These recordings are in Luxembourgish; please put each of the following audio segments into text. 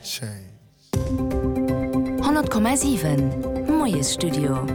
100,7 Moiesstudio.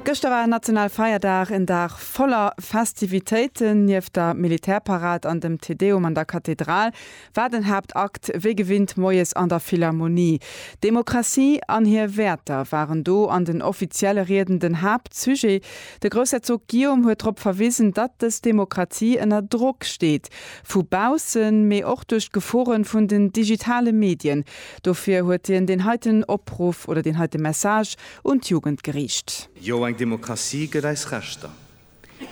Gëschter war national Feierdag, en Dag voller Festivitéiten. Nieft der Militärparad an dem Te Deum an der Kathedral war den Haaptakt wéi gewinnt moies an der Philharmonie. Demokratie an hir Wäerter waren do an den offizielle Rieden den Haaptsujet. De Groussherzog Guillaume huet drop verwisen, datt dës Demokratie ënner Drock steet. vu baussen, mee och duerch d'Geforen vun den digitale Medien. Dofir huet hien deen heiten Opruff oder deen heite Message un d'Jugend geriicht. Jo, eng Demokratie gëtt eis Rechter,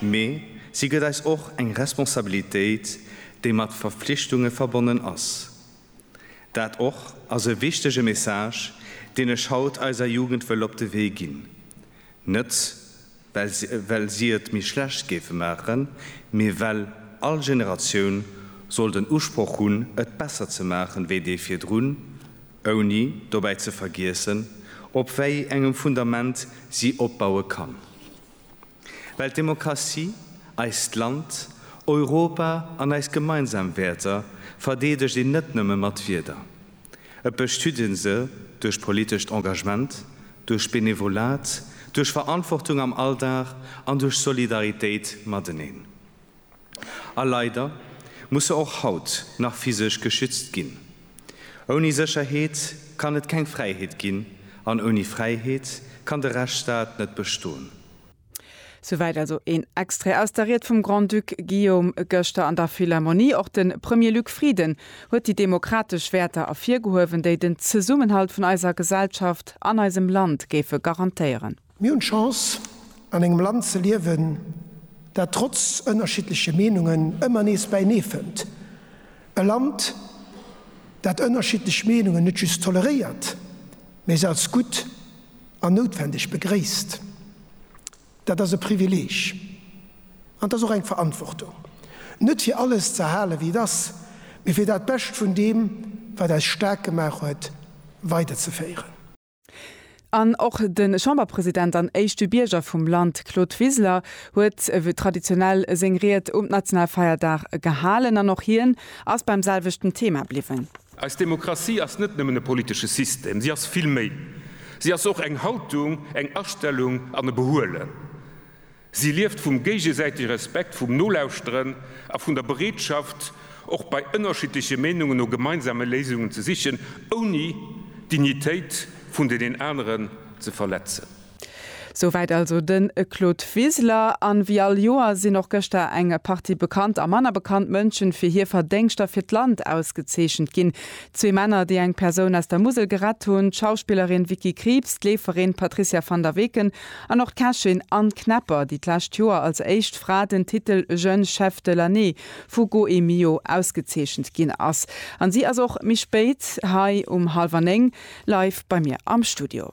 mee si gëtt eis och eng Responsabilitéit, déi mat Verflichtunge verbonnen ass. Dat och ass e wichtege Message, deen ech haut eiser Jugend wëll op de Wee ginn. Net well si et méi schlecht géife maachen, mee well all Generatioun soll den Usproch hunn, et besser ze maachen, wéi déi virdrun, ouni dobäi ze vergiessen, op wéi engem Fundament si opbaue kann. Well d'Demokratie eist Land, Europa an eis gemeinsam Wäerter verdeedegt een net nëmme mat Wieder. Et bestüt ee se duerch politescht Engagement, duerch Benevolat, duerch Verantwortung am Alldag an duerch Solidaritéit mateneen. A leider muss se och haut nach physesch geschützt ginn. Ouni Sécherheet kann et keng Fräiheet ginn an ouni Fräiheet kann de Rechtsstaat net bestoen. Souwäit also een Extrait aus der Ried vum Grand-Duc Guillaume gëschter an der Philharmonie. Och de Premier Luc Frieden huet déi demokratesch Wäerter ervirgehuewen, déi den Zesummenhalt vun eiser Gesellschaft an eisem Land géife garantéieren. Mir hunn d'Chance, an engem Land ze liewen, dat trotz ënnerschiddleche Meenungen ëmmer nees bäinee fënnt. E Land, dat ënnerschiddlech Meenungen net just toleréiert, mee se als gutt an noutwendeg begréisst. Dat ass e Privileeg an et ass och eng Verantwortung, net fir alles ze erhalen, wéi et ass, mee fir dat Bescht vun deem, wat eis staark gemaach huet, weiderzeféieren. An och de Chamberpresident an éischte Bierger vum Land Claude Wiseler huet ewéi traditionell seng Ried um Nationalfeierdag gehalen an och hien ass beim selwechten Thema bliwwen. Eis Demokratie ass net nëmmen e politesche System, si ass vill méi. Si ass och eng Haltung, eng Astellung an e Behuelen. Si lieft vum géigesäitege Respekt, vum Nolauschteren a vun der Bereetschaft, och bei ënnerschiddleche Meenungen no gemeinsame Léisungen ze sichen, ouni d'Dignitéit vun deenen aneren ze verletzen. Souwäit also den Claude Wiseler. An wéi all Joer sinn och gëschter eng Partie bekannt a manner bekannt Mënschen fir hir Verdéngschter fir d'Land ausgezeechent ginn. Zwee Männer, déi eng Persoun aus der Musel gerett hunn, d'Schauspillerin Vicky Krieps, d'Leeferin Patricia van der Weken An och d'Kächin Anne Knepper, déi d'lescht Joer als éischt Fra den Titel Jeune Chef de l'année vu Goemio ausgezeechent ginn ass. An si ass och méi spéit hei um hallwer néng live bei mir am Studio.